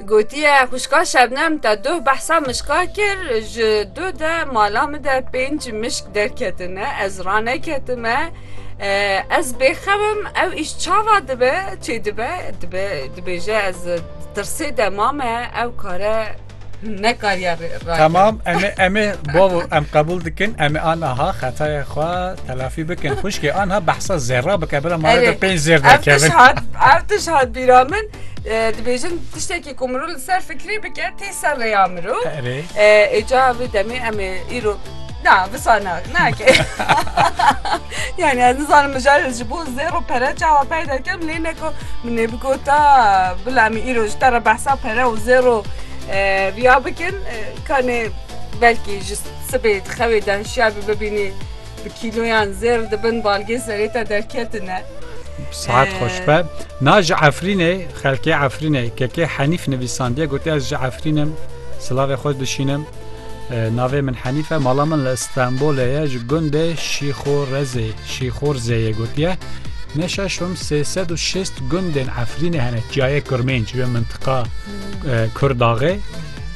Gotiye xwişka Şebnem te duh behsa mişka kir ji duh de mala min de pênc mişk derketine ez raneketime ez bêxemim ew îş çawa dibe çê dibe dibêje ez tirsê de mame ew kare nekariya rayber. Tamam em ê em ê bavo em qebûl dikin em ê anaha xetaya xwe telafî bikin xwişkê anha behsa zêra bike bila mala de pênc zêr derkevin ev tiş hat bîra min dibêjin tiştekî ku mirov li ser fikirê bike tê ser rêya mirov êca vê demê em ê îro Na, wisa na, nake. yani ez nizanim mijarê ji bo zêro pere çawa peyda kem lê neko min ê bigota bila em îro ji te re behsa pere û zêro riya bikin kanê belkî ji sibê dixewê de hişyar bi bibînî bi kîloyan zêr dibin balgê serê te derketine. Saat xweş be. Na ji Efrînê xelkê Efrînê kekê Henîf nivîsandiye gotiye ez ji Efrînim silavê xwe dişînim. Navê min Henîf e, mala min li Stenbolê ye ji gundê Şîxorezê Şîxorzê yê gotiye. Ne şeşm 360 gundên Efrînê hene çiyayê Kurmênc wê mintiqa Kurdaxê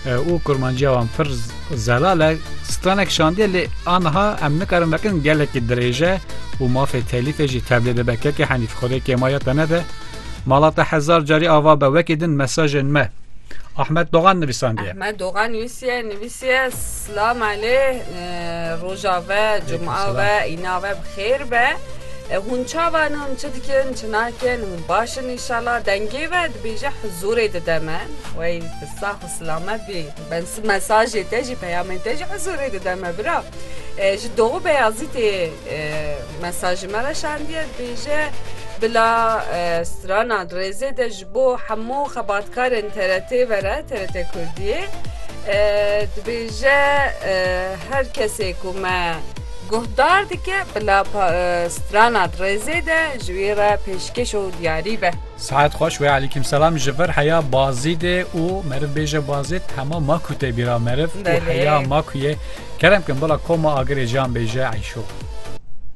û kurmanciya wan pir zelal e stranek şandiye lê anha em nikarin vekin gelekî dirêje û mafê telîfê jî tevlê dibe kekê henîf xwedê kêmaya te nede Mala te hezar carî ava be wekî din mesajên me. Ahmet Dogan nivîsandiye. Ahmet Dogan nivîsiye nivîsiye Silam Elê roja ve cuma ve îna ve bixêr be. Hûn çavan hûn çi dikin çi nakin hûn başin înşallah dengê ve dibêje huzûrê dide me wey bi sax û silamet bî ben mesajê te jî peyamên te jî huzûrê dide me bira ji Doğu Beyazîtê Mesajê me re şandiyê dibêje, Bila strana rêzê de ji bo hemû xebatkarên TRT'ê vere, TRT Kurdiyê. Dibêje her kesê ku me guhdar dike bila strana rêzê de ji wî re pêşkêş û diyarî be. Sihet xweş wê alîkim selam ji vir heya Bazîdê û meriv bêje Bazîd hema ma ku tê bîra meriv û heya ma ku ye kerem kin bila koma agirê jan bêje eyşo.